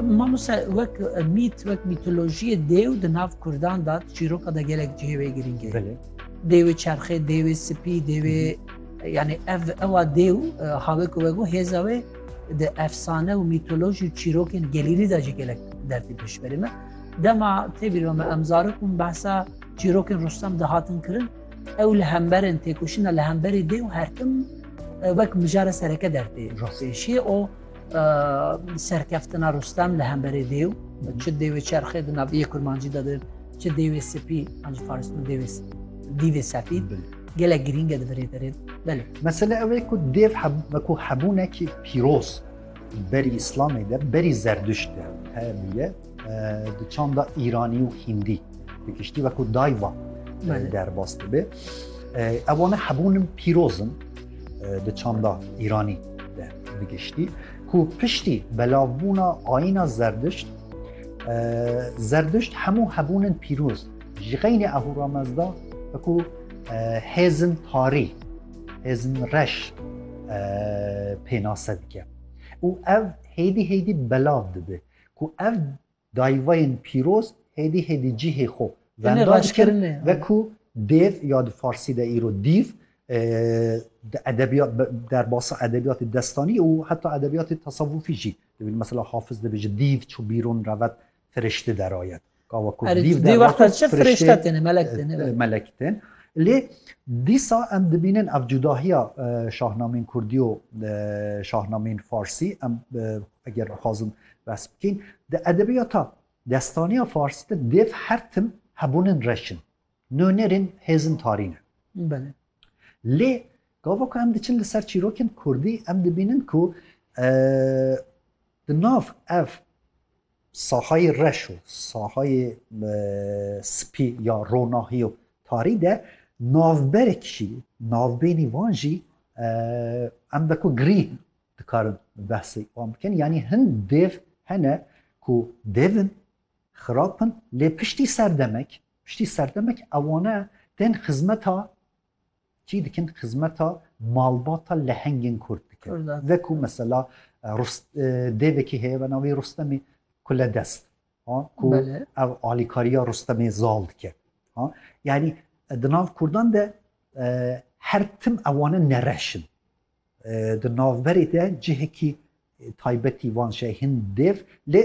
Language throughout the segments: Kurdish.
Mamoste wek mît wek mîtolojiyê dêw di nav Kurdan da çîroka da gelek cihê wê girîng e. Dêwê çerxê, dêwê spî, dêwê yani ev ewa dêw e, havê ku wego hêza wê di efsane û mîtolojî û çîrokên gelîrî da jî gelek derdî pêşberî me. Dema têbîr me em zarok û behsa çîrokên Rustem dihatin kirin Ew li hemberên têkoşîna li hemberî dê û hertim wek mijara sereke dertê. Rûpêşî û serkeftina Rustem li hemberê dê û çi dêwê çerxê di naviyê kurmancî de din çi dêwê spî an ji faris min dêwê dîvê sefî gelek girînge di birê derê belê. Mesele ew ê ku dêv ku hebûnekî pîroz berî îslamê de berî zerdişt de hebûye. Di çanda Îranî û Hîndî bi giştî wekû dayva derbas dibe. Ewane hebûnin pîrozin di çanda Îranî de bi giştî ku piştî belavbûna ayîna zerdişt zerdişt hemû hebûnin pîroz ji xeynê ehûramezda wekû hêzin tarî hêzin reş pênase dike û ev hêdî hêdî belav dibe. Ku ev dayîvayên pîroz hêdî hêdî cîhê xwe venda dikin ve ku dêv ya di farsî de îro dîv di edebiyat derbasa edebiyatê destanî û heta edebiyatê tesewufî jî dibin. Mesela Hafiz dibêje dîv çû bîrûn revet firişti derayet. Ka wekû Erê, dîv dî der wexta wekû çi firiştê firîşte têne, melek têne, be. e, melek tên. Lê dîsa em dibînin ev cudahiya e, şahnameyên kurdî û e, şahnameyên farsî em e, eger bixwazin behs bikîn di edebiyata destaniya farsî de dêv her tim hebûnin reş in. Nûnerên hêzin tarî ne. Belê. Lê gava ku em diçin li ser çîrokên kurdî em dibînin ku e, di nav ev sahayê reş û sahayê spî ya ronahî û tarî de navberek jî navbênî wan jî em wekû girî dikarin behsê wan bikin yanî hin dêv hene ku devin xirap in lê piştî serdemek piştî serdemek ewane tên xizmeta Çî dikin xizmeta malbata lehengên kurd dikin. Veku mesela dêvekî heye be navî Rustemî Kuledest ha ku ev alîkariya Rustemê zal dike. Ha yanî di nav kurdan de her tim ewane nereş in. Di navberê de cihekî taybetî wan şe hin dêv lê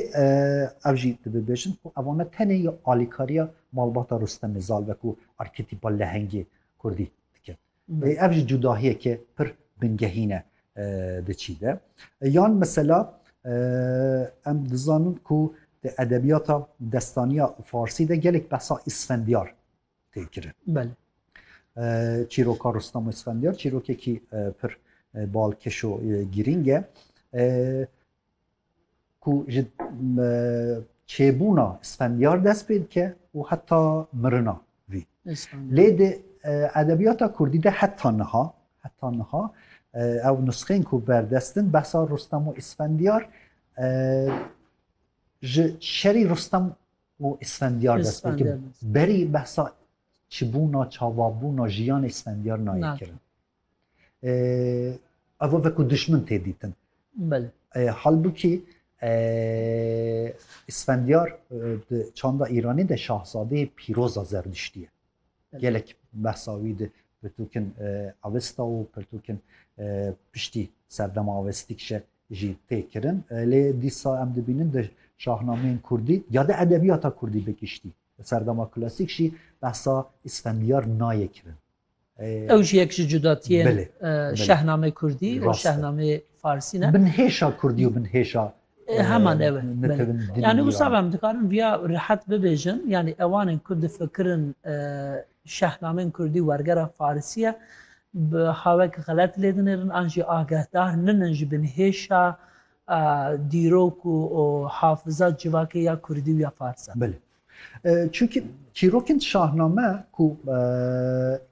ev jî dibêjin ku evane tenê ya alîkariya malbata Rustemê Zal wekû arketîpa lehengê kurdî dikin. Ev jî cudahiyeke pir bingehî ne di çî de. Yan mesela em dizanin ku di edebiyata destaniya farsî de gelek behsa îsfendiyar tê kirin. Belê. Çîroka Rustam Esfendiyar çîrokekî pir balkeş û girîng e. Ku ji çêbûna Esfendiyar dest pê dike û heta mirina vî. Lê di edebiyata Kurdî de heta niha heta niha ew nusxên ku berdestin behsa Rustam û Esfendiyar ji şerî Rustam û Isfendiyar dest pê kir. Berî behsa çibûna, çavabûna jiyanê Isfendiyar nayê kirin. Ev veku dişmin tê dîtin. Halbûkî Isfendiyar di çanda Îranî de şahzadeyê pîroza zerdiştî ye. Gelek behsa wî di pirtûkên Avesta û pirtûkên piştî serdema Avestî kişe jî tê kirin. Lê dîsa em dibînin di şahnameyên kurdî ya di edebiyata kurdî bi giştî di serdema klasîk jî behsa îsfendiyar nayê kirin. Ew jî yek ji cudatiyên şehnamê kurdî û şehnamê farsî ne. Binhêşa kurdî û binhêşa heman ev yani wisa em dikarin viya rehet bibêjin yani ewanên ku difikirin Şehnameyên kurdî wergera farisî ye, bi hawek xelet lê dinêrin an jî agehdar ninin ji binhêşa dîrok û hafiza civakê ya kurdî û ya farsan. Belê. Çimkî çîrokên şahname ku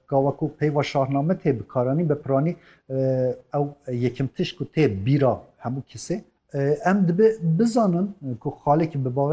gawa ku peyva şahname tê bikaranîn bi piranî ew yekem tişt ku tê bîra hemû kesê em dibe bizanin ku xalekî bi